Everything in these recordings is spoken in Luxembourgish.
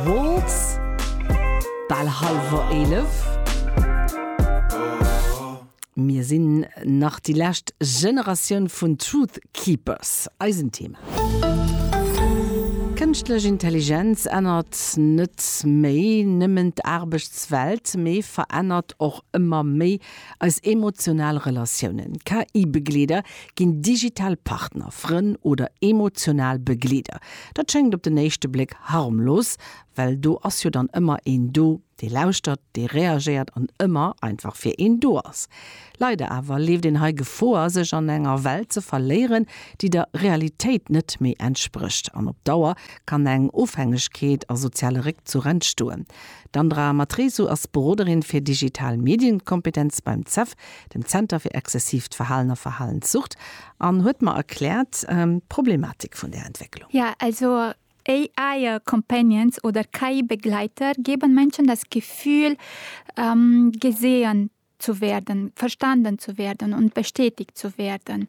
Waltz, bal hallwer 11. Mir sinn nach déi lescht Generatioun vun Truth Keepers. Eisen Thema. Kënschtlech Intelligenz ännert net méi nëmmen d'Aarbechtswelt, mee verännert och ëmmer méi eis emotional Relatiounen. KI-Begleeder ginn digital Partner, Frënn oder emotional Begleeder. Dat schéngt op den éischte Bléck harmlos, well do ass jo dann ëmmer een do, dee lauschtert, dee reagéiert an ëmmer einfach fir een do ass. Leider awer leeft een hei Gefoer, sech an enger Welt ze verléieren, déi der Realitéit net méi entsprécht. An op Dauer kann eng Ofhängegkeet a soziale Réckzuch entstoen. D'Andra Matresu ass Beroderin fir digital Medienkompetenz beim CEF dem Zenter fir exzessiivt Verhalen a Verhalenssucht, an huet mer erkläert d'Problematik vun där Entwécklung. Ja, also AI-Companions oder KI-Begleiter geben Menschen das Gefühl, gesehen zu werden, verstanden zu werden und bestätigt zu werden.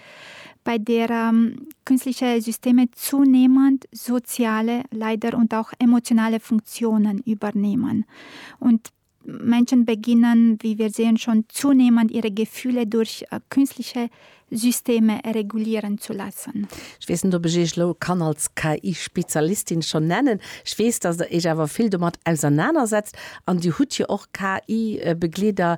bei derer künstliche Systeme zunehmend soziale, leider und auch emotionale Funktionen übernehmen und Menschen beginnen, wie wir sehen, schon zunehmend ihre Gefühle durch künstliche Systeme regulieren zu lassen. Ech weess net, ob ech Iech elo kann als KI-Spezialistin schon nennen. Ech weess, dass Der Iech awer vill domat ausernanersetzt an Dir hutt jo och KI-Begleeder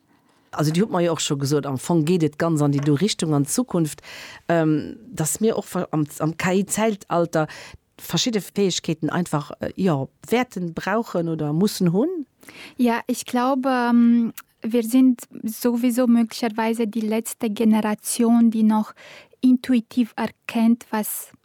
Also Dir hutt mer jo och scho gesot, am Fong geet et ganz an déi do Richtung an Zukunft, datt mir och am KI-Zäitalter verschidde Fäegkeeten einfach, jo, wäerten brauchen oder mussen hunn. Ja, ech glaube, wir sind sowieso möglicherweise die letzte Generation, die noch intuitiv erkennt, was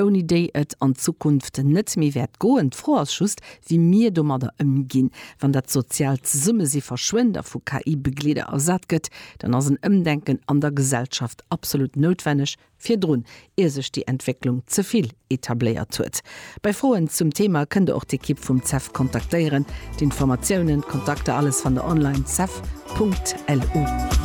ouni déi et an Zukunft net méi wäert goen. D'Fro ass just, wéi mir domadder ëmginn. Wann dat soziaalt Zesummesi verschwënnt a vu KI-Begleeder ersat gëtt, dann ass en Ëmdenken an der Gesellschaft absolut noutwenneg, virdrun, ier sech déi Entwécklung ze vill etabléiert huet. Bei Froen zum Thema kënnt der och d'Ekipp vum CEF kontaktéieren. D'Informatiounen, d'Kontakter, alles fannt der online, cef.lu.